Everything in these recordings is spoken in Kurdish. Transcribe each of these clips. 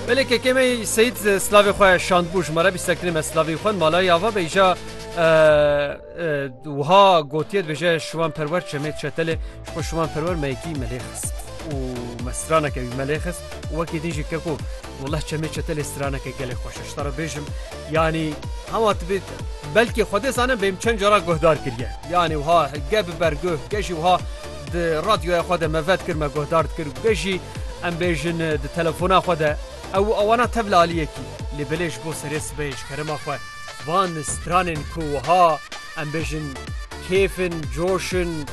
Belê kekê me Seyîd silavê xwe şandbû ji me re bîstektinê me silavê xwe malayê ava bêja wiha gotiye dibêje şiwan perwer çemê çetelê ji xwe şiwan perwer me yekî me lê xist û me straneke wî me lê xist û wekî din jî keko Wallah çemê çetelê straneke gelê xweş e ji te re bêjim yanî hema tu bê belkî xwedê zanin bêm çend cara guhdar kiriye yanî wiha ge bi ber guh ge jî wiha Di radyoya xwe de me vet kir, me guhdar dikir û geh jî em bêjin di telefona xwe de ew û awana tevla aliyekî. Lê belê ji bo serê sibehê ji kerema xwe van stranên ku wiha em bêjin kêf in, coş in,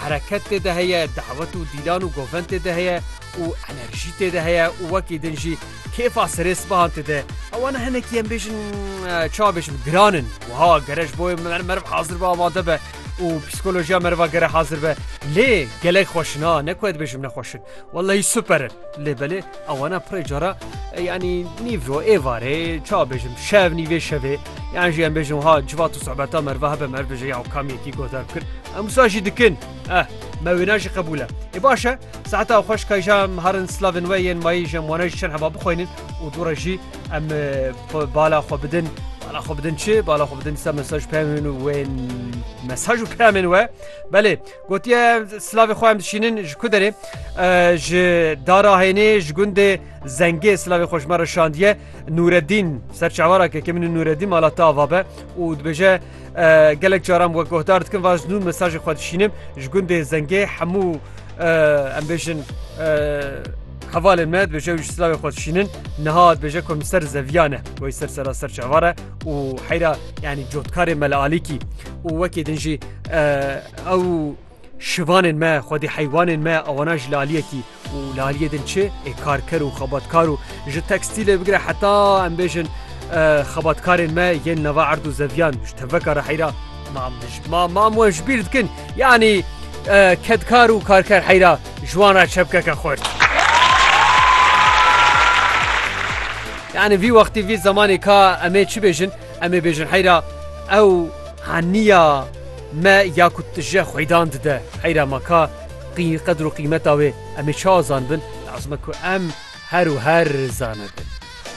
hereket tê de heye, dawet û dîlan û govend tê de heye û enerjî tê de heye û wekî din jî kêfa serê sibehan tê de awana hinekî em bêjin çawa bêjim giran in. Wiha gere ji bo meriv hezir be amade be. û psîkolojiya meriva gere hazir be lê gelek xweşin a ne ku dibêjim nexweşin wellahî super in lê belê ewana pirê cara yanî nîvro ê varê ça bêjim şev nîvê şevê yan jî em bêjin ha civat û sohbeta meriva hebe mer bêje ya kam yekî godar bikir em wisa jî dikin eh me wêna jî qebûle ê baş e saeta xweş kayja harin slavên we yên mayî jem wana jî çend heba bixwînin û dû re jî em bala xwe bidin bala xwe bidin çi bala xwe bidin dîsa mesaj peyamên û wê mesaj û peyamên we belê gotiye silavê xwe em dişînin ji ku derê ji dara hênê ji gundê zengê silavê xwe ji me re şandiye nûredîn serçawarakeke min nûredîn mala tava be û dibêje Gelek caran wek guhdar dikin va ji nû mesajê xwe dişînim ji gundê zengê hemû em bêjin hevalên me dibêje wî ji silavê xwe dişînin niha dibêje ku min ser zeviyane wê ser sera ser çavare û heyra yanî cotkarê me li alîkî û wekê din jî ew Şivanên me, xwedî heywanên me awana ji laliyekî û laliyê din çi ê karker û xebatkar û ji tekstîlê bigire heta em bêjin xebatkarên me yên nava erd û zeviyan ji teveka re heyra mam dij ma mam we ji bîr dikin yanî kedkar û karker heyra ji wan re çepkeke xurt. Yani vî wextî vî zemanê ka em ê çi bêjin em ê bêjin heyra ew haniya Me ya ku tije xwêdan dide heyra ma ka qî qedir û qîmeta wê em ê çawa zanibin, lazim e ku em her û her zanibin.